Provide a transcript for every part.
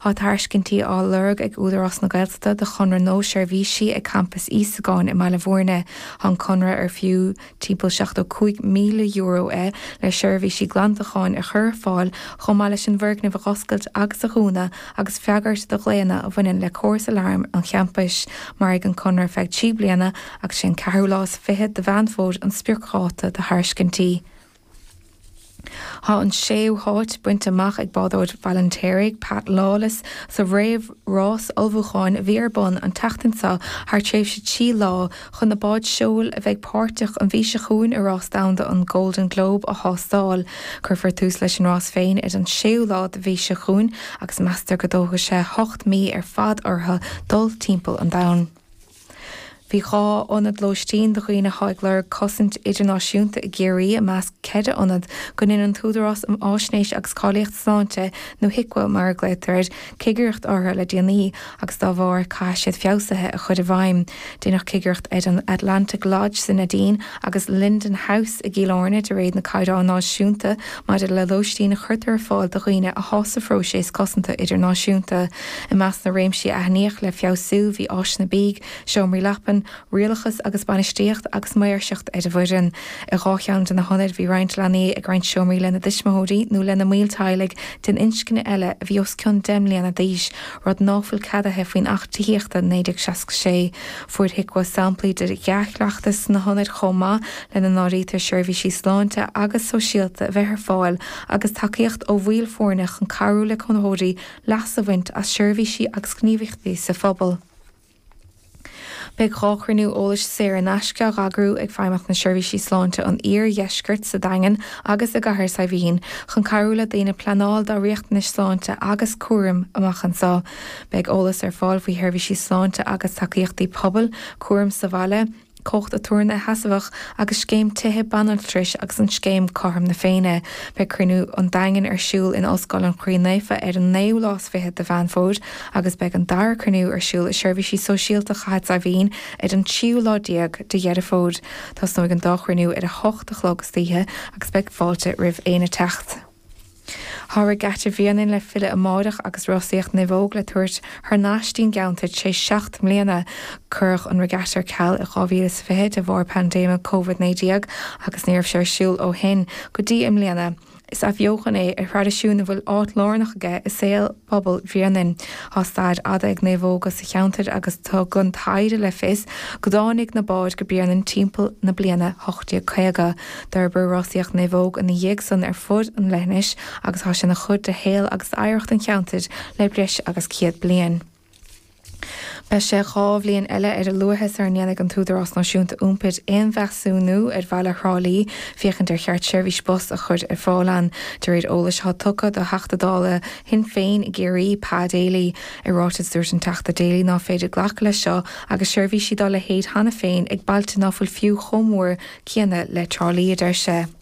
Tá tairiscintí á lorg ag Údarás na Gaeltachta do chonradh nua seirbhísí ag Campas Íosagáin i mBaile Mhúirne. Tá an conradh, ar fiú timpeall €75,000 é, le seirbhísí glantacháin a chur ar fáil chomh maith leis an bhfoirgneamh a dh'oscailt agus a dhúnadh agus freagairt do ghlaonna a bhaineann le córas aláraim an champais. Mairfidh an conradh ar feadh trí bliana agus is é an ceathrú lá is fiche de Mheán Fómhair an spriocdháta do thairiscintí. Tá an séú háit bainte amach ag bádóir Bhaile an Fheirtéaraigh, Pat Lawless, sa réamhrás ullmhúcháin a bhí ar bun an tseachtain seo thar tréimhse trí lá chun na báid seoil a bheidh páirteach an mhí seo chugainn i Rás Domhanda an Golden Globe a thástáil. Cuirfear tús leis an rás féin ar an séú lá den mhí seo chugainn agus meastar go dtógfaidh sé ocht mí ar fad orthu dul timpeall an domhain. Bhí dhá ionad lóistín do dhaoine atá ag lorg cosaint idirnáisiúnta i gCiarraí i measc ceithre ionad go ndein an tÚdarás um Fhaisnéis agus Cáilíocht Sláinte nó HIQA mar a glaotar air, cigireacht orthu le déanaí agus dá bharr caithfidh siad feabhsuithe a chur i bhfeidhm. Deineadh cigireacht ar an Atlantic Lodge sa Neidín agus Linden House i gCill Airne de réir na caighdeán náisiúnta maidir le lóistín a chuirtear ar fáil do dhaoine atá sa phróiseas cosanta idirnáisiúnta. I measc na réimsí a aithníodh le feabhsú bhí áiseanna bídh, seomraí leapan, rialachas agus bainistíocht agus maoirseacht ar an bhfoireann. I dhá cheann de na hionaid bhí roinnt leanaí ag roinnt seomraí lena dtuismitheoirí nó lena mbaill teaghlaigh den inscne eile a bhí os cionn deich mbliana d'aois, rud ná fuil ceadaithe faoin Acht Tithíochta 1966. Fuair HIQA samplaí de dhea-chleachtas sna hionaid chomh maith, lena n-áirítear seirbhísí sláinte agus sóisialta a bheith ar fáil agus tacaíocht ó bhaill foirne chun cabhrú le cónaitheoirí leas a bhaint as seirbhísí agus gníomhaíochtaí sa phobal. Beidh dhá chruinniú eolais saor in aisce á dh'eagrú ag Feidhmeannacht na Seirbhísí Sláinte an Iardheiscirt sa Daingean agus i gCathair Saidhbhín chun cabhrú le daoine pleanáil dá riachtanais sláinte agus cúraim amach anseo. Beidh eolas ar fáil faoi sheirbhísí sláinte agus tacaíochtaí pobail, cúram sa bhaile, cumhacht aturnae sheasmhach agus scéim tithe banaltrais agus an scéim Cothrom na Féinne. Beidh Cruinniú an Daingin ar siúl in Ollscoil an Chroí Naofa ar an naoú lá is fiche de Mheán Fómhair agus beidh an dara cruinniú ar siúl i Seirbhísí Sóisialta Chathair Saidhbhín ar an tríú lá déag de Dheireadh Fómhair. Tosnóidh an dá chruinniú ar a hocht a chlog istoíche agus beidh fáilte roimh éinne teacht. Tá Regatta Bhréanainn le filleadh amáireach agus rásaíocht naomhóg le tabhairt thar nais dtí'n gceantar tar éis seacht mbliana. Cuireadh an Regatta ar ceal i 2020 de bharr paindéime Covid 19 agus ní raibh sé ar siúl ó shin go dtí i mbliana. Is athbheochan é ar thraidisiún a bhfuil áit lárnach aige i saol. Pobal Bhréanainn. Tá stair fhada ag naomhóga sa cheantar agus tugann taighde le fios go dtáinig na báid go Bréanainn timpeall na bliana 1850. D'fhorbair rásaíocht naomhóg ina dhiaidh san ar fud an leithinis agus tá sé ina chuid de shaol agus oidhreacht an cheantair le breis agus céad bliain. Beidh sé dhá bhliain eile ar a luaithe sara ndéanfaidh an tÚdarás Náisiúnta Iompair aon mheasúnú ar Bhaile Thrá Lí féachaint ar cheart seirbhís bus a chur ar fáil ann, de réir eolais atá tugtha do Theachta Dála Shinn Féin i gCiarraí, Pa Daly. I ráiteas dúirt an Teachta Daly ná féidir glacadh leis seo agus seirbhísí dá leithéid cheana féin ag bailte ná fuil fiú chomh mór céanna le Trá Lí, a deir sé.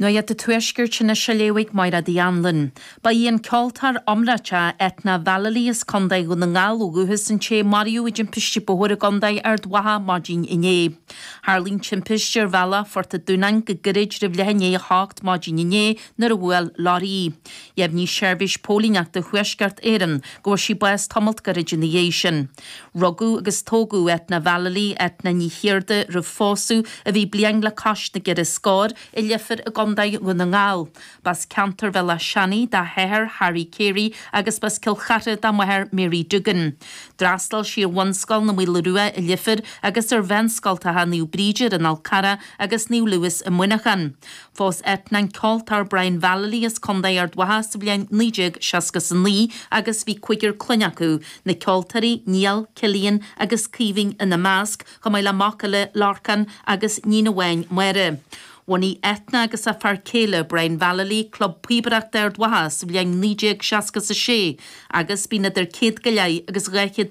Nuacht an Tuaiscirt anois á léamh ag Máiread Uí Annluain. Ba í an ceoltóir iomráiteach Eithne Vallely as Contae Dhún na nGall ó dhúchas an té a maraíodh i dtimpiste bóthair i gContae Ard Mhacha maidin inné. Tharlaigh an timpiste ar bhealach Phort an Dúnáin go gairid roimh leath i ndiaidh a 8 maidin inné nuair a bhuail leoraí í. Dheimhnigh Seirbhís Póilíneachta Thuaisceart Éireann go bhfuair sí bás tamalt gairid ina dhiaidh sin. Rugadh agus tógadh Eithne Vallely, Eithne Ní Chiardha, roimh phósadh, a bhí bliain le cois na gceithre scór, i Leifear i gContae Dhún na nGall. B'as ceantar Bhéal Átha Seanaigh dá hathair, Harry Carey, agus b'as Cill Chartha dá máthair, Mary Doogan. D'fhreastail sí ar Bhunscoil na Maoile Rua i Leifear agus ar mheánscoltacha Naomh Bríd ar an Fhál Carrach agus Naomh Louis i Muineachán. Phós Eithne an ceoltóir Brian Vallely as Contae Ard Mhacha sa bhliain 1969 agus bhí cúigear clainne acu, na ceoltóirí Niall, Cillian agus Caoimhín ina measc, chomh maith le mac eile, Lorcán, agus níon amháin, Máire. Bhunaigh Eithne agus a fear céile, Brian Vallely, Club Píobaireachta Ard Mhacha sa bhliain 1966 agus bíonn idir 100 go leith agus 200